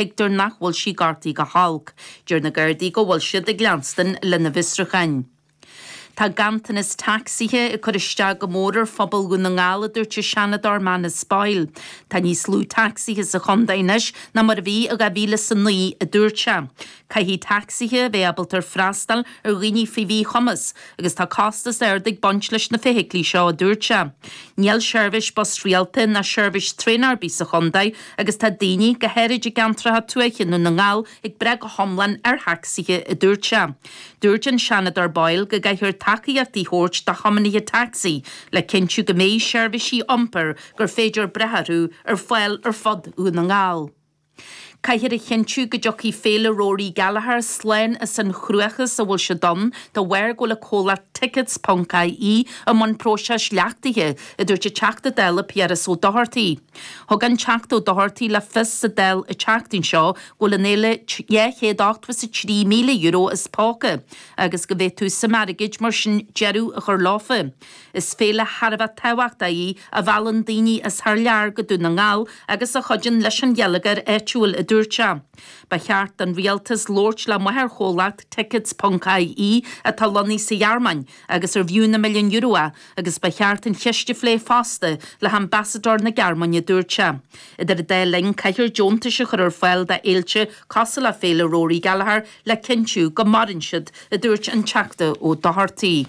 Tuigtear nach bhfuil sí gortaithe go holc. Deir na Gardaí go bhfuil siad ag leanstan lena bhfiosrúcháin. Tá ganntanas tacsaithe ag cur isteach go mór ar phobal Dhún na nGall a dúirt an Seanadóir Manus Boyle. Tá níos lú tacsaithe sa Chondae anois ná mar a bhí i 2009 a dúirt sé. Caithfidh tacsaithe a bheith ábalta freastal ar dhaoine faoi mhíchumas. Agus tá costas ard ag baint leis na feithiclí seo, a dúirt sé. Níl seirbhís bus rialta ná seirbhís traein ar bith sa chontae agus tá daoine, go háirid i gceantracha tuaithe i nDún na nGall, ag brath go hiomlán ar thacsaithe, a dúirt sé. Dúirt an Seanadóir Boyle go gcaithfear tacaíocht a thabhairt do thiomanaithe tacsaí le cinntiú go mbeidh seirbhísí iompair gur féidir brath orthu ar fáil ar fud Dhún na nGall. Caithfear a chinntiú go dtiocfaidh Féile Rory Gallagher slán as an chruachás a bhfuil siad ann de bharr go bhfuil an comhlacht Tickets Ponc IE i mbun próiseas leachtaithe, a dúirt an Teachta Dála Piaras Ó Dochartaigh. Thug an Teachta Ó Dochartaigh le fios sa Dáil an tseachtain seo go bhfuil an fhéile €283,000 as póca agus go bhféadfadh suim airgid mar sin deireadh a chur leofa. Is féile thar a bheith tábhachtach í a mheallann daoine as thar lear go Dún na nGall agus a chuidíonn leis an gheilleagar áitiúil, a dúirt sé. Ba cheart don Rialtas labhairt le máthairchomhlacht Tickets ponc IE atá lonnaithe sa Ghearmáin agus arbh fhiú na milliúin euro é agus ba cheart an cheist a phlé fosta le hambasadóir na Gearmáine, a dúirt sé. Idir an dá linn, caithfear deontais a chur ar fáil do fhéilte cosúil le Féile Rory Gallagher le cinntiú go maireann siad, a dúirt an Teachta Ó Dochartaigh.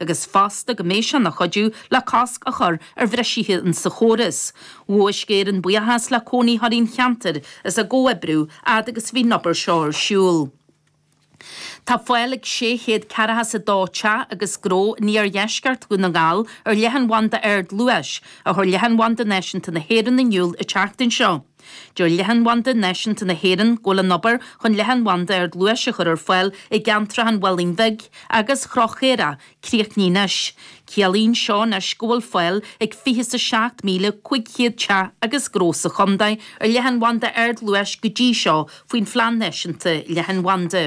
agus fosta go mbeidh sé ina chuidiú le cosc a chur ar bhrisithe insa chóras. Ghabh Uisce Éireann buíochas le cónaitheoirí an cheantair as a gcomhoibriú fhad agus a bhí an obair seo ar siúl. Tá fáil ag sé chéad ceathracha is a dó teach agus gnó in iardheisceart Dhún na nGall ar leathanbhanda ardluais, a chuir Leathanbhanda Náisiúnta na hÉireann in iúl an tseachtain seo. Deir Leathanbhanda Náisiúnta na hÉireann go bhfuil an obair chun leathanbhanda ardluais a chur ar fáil i gceantracha an Mhálainn Bhig agus Chró Chaorach críochnaithe anois. Ciallaíonn seo anois go bhfuil fáil ag 27,500 teach agus gnó sa chontae ar leathanbhanda ardluais go dtí seo faoin Phlean Náisiúnta Leathanbhanda.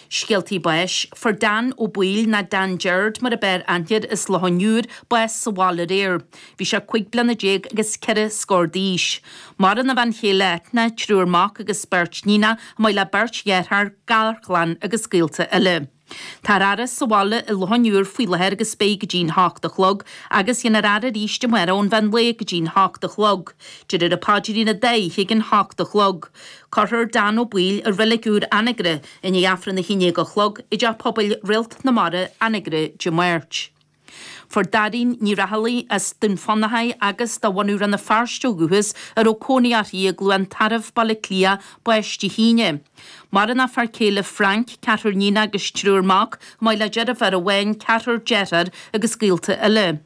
Scéaltaí Báis, fuair Dan Ó Baoill, nó Dan Jeird mar ab fhearr aithne air as Loch an Iúir, bás sa bhaile aréir. Bhí sé cuig bliana déag agus ceithre scór d'aois. Maireann a bhean chéile Eithne, triúr mac agus beirt níonach, chomh maith le beirt dheartháir, garchlann agus gaolta eile. Táthar á fhaire sa bhaile i Loch an Iúir faoi láthair agus beidh go dtí'n h-ocht a chlog agus déanfar é a fhaire arís amárach ón mheán lae go dtí'n h-ocht a chlog, déarfar an paidrín an dá oíche ag an h-ocht a chlog. Cuirfear Dan Ó Baoill i Reilig Úr Anagaire i ndiaidh Aifreann a haon dhéag a chlog i dTeach Pobail Réalt na Mara, Anagaire, Dé Máirt. Fuair Dáirín Ní Raghallaigh as Dún Fionnachaidh agus de bhunadh Rann na Feirste ó dhúchas, a raibh cónaí uirthi i gCluain Tarbh, Baile Átha Cliath, bás Dé hAoine. Maireann a fear céile Frank, ceathrar iníon agus triúr mac, chomh maith le deirféar amháin, ceathrar dearthár agus gaolta eile.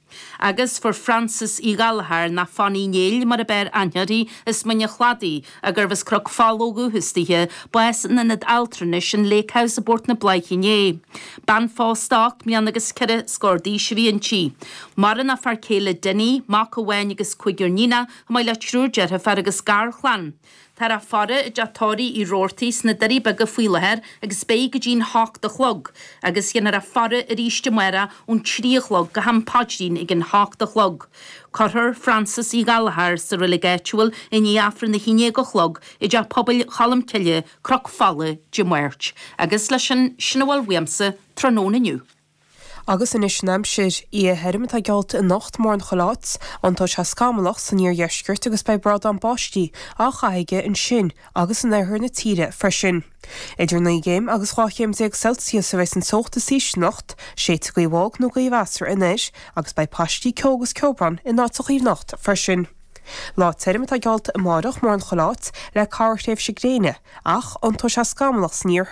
Agus fuair Frances Uí Ghallchóir nó Fanny Néill mar ab fhearr aithne uirthi as Mín an Chladaigh, agus arbh as Cnoc Fola ó dhúchas di, bás in ionad altranais an Lake House i bPort na Bláiche inné. Bean phósta ocht mbliana agus ceithre scór d'aois a bhí inti. Maireann a fear céile Denis, mac amháin agus cúigear níon, chomh maith le triúr deirfiúr agus garchlann. Táthar á faire i dteach tórraimh Roarty sna Doirí Beaga faoi láthair agus beidh go dtí'n h-ocht a chlog agus déanfar í a fhaire arís amárach ón trí a chlog go ham paidrín ag an h-ocht a chlog. Cuirfear Frances Uí Ghallchóir sa reilig áitiúil i ndiaidh Aifreann a haon déag a chlog i dteach pobail Cholm Cille, Cnoc Fola, Dé Máirt. Agus leis sin, sin a bhfuil uaimse tráthnóna inniu. Agus anois an aimsir. Oíche thirim atá geallta anocht, mórán chuile áit, iontóidh sé scamallach san iardheisceart agus beidh brádán báistí á chaitheamh aige ansin agus in oirthear na tíre freisin. Idir naoi gcéim agus dhá chéim déag Celsius a bheidh sa teocht is ísle anocht, séidfidh gaoth bhog nó gaoth mheasartha anoir agus beidh paistí ceo agus ceobhrán in áiteachaí anocht freisin. Lá tirim atá geallta amárach, mórán chuile áit, le corrthréimhse gréine, ach iontóidh sé scamallach san iarthar.